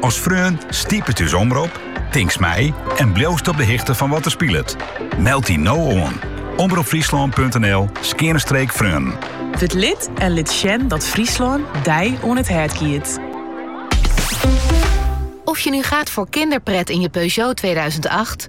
As freon stipest ús omrop, tinkst mei en bliuwst op de hichte fan wat der spilet. Meld dy no oan, omropfryslân.nl skeane streek freonen. Wurd lid en lit sjen dat Fryslân dy oan it hert giet. Of je nu gaat voor kinderpret in je Peugeot 2008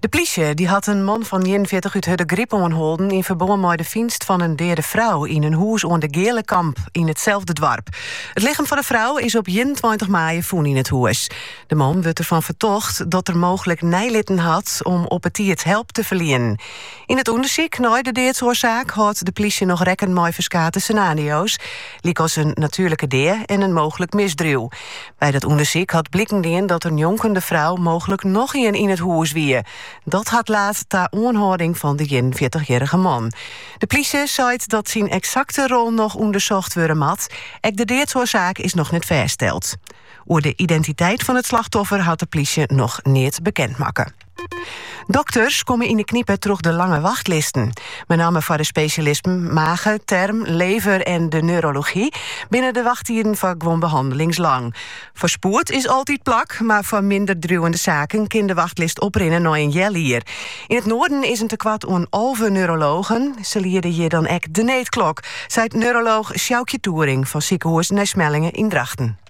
De plysje dy hat in man fan njoggenenfjirtich út Hurdegaryp oanholden yn ferbân mei de fynst fan in deade frou yn in hûs oan de Gealekamp yn itselde doarp. It lichem fan de frou is op ienentweintich maaie fûn yn it hûs. De man wurdt derfan fertocht dat er mooglik neilitten hat om op 'e tiid help te ferlienen. Yn it ûndersyk nei de deadsoarsaak hâldt de plysje noch rekken mei ferskate senario's, lykas in natuerlike dea en in mooglik misdriuw. By dat ûndersyk hat bliken dien dat der njonken de frou mooglik noch ien yn it hûs wie. Dat hat laat ta oanhâlding fan de 41-jierrige man. De plysje seit dat syn eksakte rol noch ûndersocht wurde moat. Ek de deadsoarsaak is noch net fêststeld. Oer de identiteit fan it slachtoffer hat de plysje noch neat bekend makke. Dokters komme yn de knipe troch de lange wachtlisten. Mei namme foar de spesjalisten mage, term, lever en de neurology binne de wachttieden foar guon behandelings lang. Foar spoed is altyd plak, mar foar minder driuwende saken kin de wachtlist oprinne nei in heal jier. Yn it noarden is in tekoart oan alve neurologen. Se liede hjir dan ek de needklok, seit neurolooch Sjoukje Toering fan sikehûs Nij Smellinghe yn Drachten.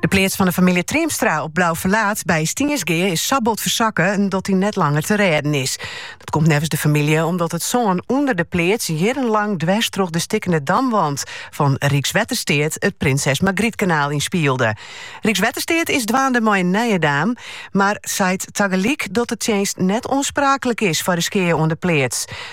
De pleats fan de famylje Triemstra op Blauforlaet by Stynsgea is sa bot fersakke dat dy net langer te rêden is. Dat komt neffens de famylje omdat it sân ûnder de pleats jierrenlang dwers troch de stikkene damwand fan Rykswettersteat it Prinses Margrietkanaal yn spielde. Rykswettersteat is dwaande mei in nije daam, mar seit tagelyk dat de tsjinst net oanspraaklik is foar de skea oan de pleats.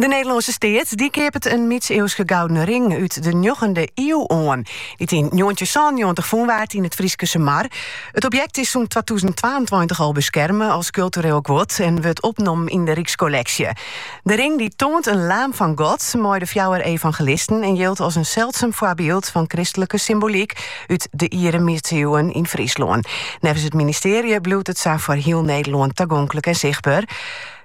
De Nederlânske steat dy keapet in midsiuwske gouden ring út de njoggende iuw oan, dy't yn njoggentjinsânennjoggentich fûn waard yn it Fryske Sumar. It objekt is sûnt twatûzen al beskerme as kultureel guod en wurdt opnommen yn de Rykskolleksje. De ring dy toant in laam fan God mei de fjouwer evangelisten en jildt as in seldsum foarbyld fan kristlike symbolyk út de iere midsiuwen yn Fryslân. Neffens it ministearje bliuwt it sa foar hiel Nederlân tagonklik en sichtber.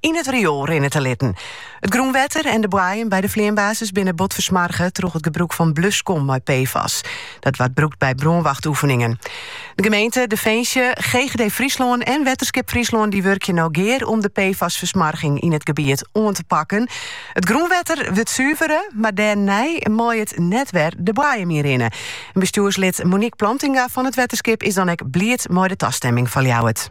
yn it riool rinne te litten. It grûnwetter en de boaiem by de fleanbasis binne bot fersmoarge troch it gebrûk fan blusskom mei PFAS. Dat waard brûkt by brânwachtoefeningen. De gemeente, Defensje, GGD Fryslân en Wetterskip Fryslân dy wurkje no gear om de PFAS-fersmoarging yn it gebied oan te pakken. It grûnwetter wurdt suvere, maar dêrnei mei it net wer de boaiem yn rinne. Bestjoerslid Monique Plantinga fan it Wetterskip is dan ek bliid mei de tastimming fan Ljouwert.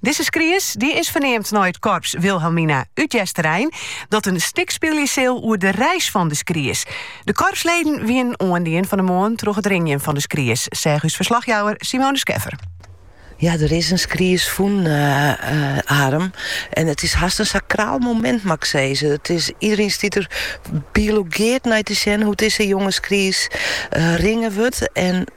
Dizze skries dy is ferneamd nei it Korps Wilhelmina út Easterein, dat in stik spylje sil oer de reis fan de skries. De korpsleden wienen oandien fan de moarn troch it ringjen fan de skries, seach ús ferslachjouwer Simone Scheffer. Ja, der is in skries fûn, Harm. En it is hast in sakraal momint, moat ik sizze. It is, iedereen stiet der biologeard nei te sjen hoe't dizze jonge skries ringe wurdt. En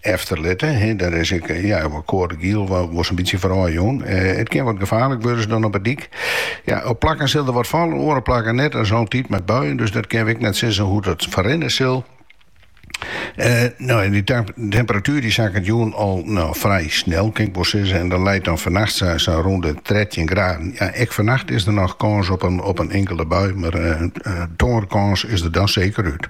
Efterlitte, der is ek ja, wat koade giel wol in bytsje foar ôfjûn. It kin wat gefaarlik wurde dan op 'e dyk. Ja, op plakken sil der wat falle, oare plakken net, as altyd mei buien, dus dat kinne we ek net sizze hoe't it ferrinne sil. No en dy temperatuer dy sakket jûn al no frij snel, kin ik wol sizze, en dat leit dan fannacht sa sa rûn de trettjin graden. Ja, ek fannacht is der noch kâns op in op in inkele bui, mar tongerkâns is der dan seker út.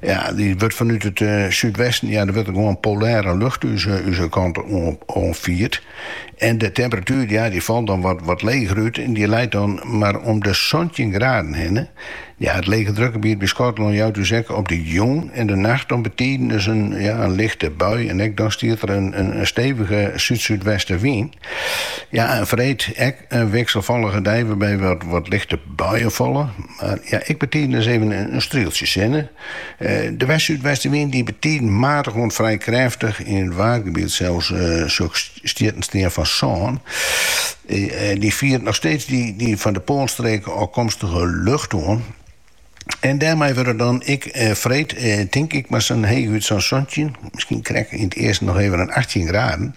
Ja, dy wurdt fanút it súdwesten, ja, der wurdt der gewoan polêre lucht ús kant oanfierd. En de temperatuer, ja, dy falt dan wat leger út en dy leit dan mar om de santjin graden hinne. Ja, it lege drukgebiet by Skotlân jout ús ek op de jûn en de nacht dan betiden ris in, ja, in lichte bui en ek dan stiet der in stevige súdsúdwestenwyn. Ja, en freed ek in wikselfallige dei wêrby wat, wat lichte buien falle. Mar ja, ek betiden ris even in, in strieltsje sinne. Eh, de west-súdwestewyn dy betiden matich oant frij krêftich, yn it Waadgebiet sels eh, soks stjitten stean fan sân. Eh, eh, dy fiert noch steeds dy, dy fan de poalstreken ôfkomstige lucht oan. En dêrmei wurdt it dan ek eh, freed, eh, tink ik, mar sa'n heechút sa'n santjin, miskien krekt yn it easten noch even in achttjin graden.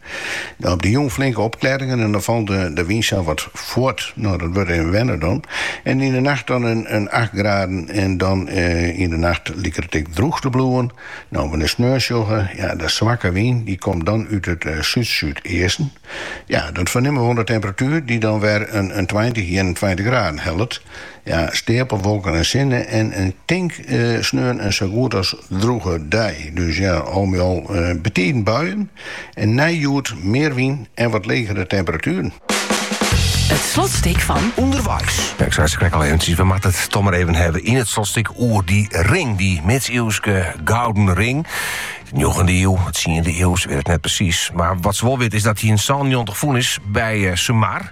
No, op de jûn flinke opkleringen en dan falt de, de wyn sa wat fuort. No, dat wurdt even wennen dan. En yn 'e nacht dan in, in acht graden en dan eh, yn 'e nacht liket it ek drûch te bliuwen. No, we nei sneon sjogge, ja, de swakke wyn dy komt dan út it eh, súdsúdeasten. Ja, dat fernimme we oan de temperatuer, dy dan wer in, in tweintich, ienentweintich graden hellet. Ja, steapelwolken en sinne en, en tink sneon in sa goed as drûge dei. Dus ja, al mei al betiden buien en nei hjoed mear wyn en wat legere temperatueren. It slotstik fan Underweis. Ik sei it al eventsjes, we moatte it toch mar even hawwe yn it slotstik oer dy ring, dy midsiuwske gouden ring. De 9e iuw, 10e iuw, se witte it net presys. Mar wat se wol witte is dat hy yn 97 fûn is by eh, Sumar.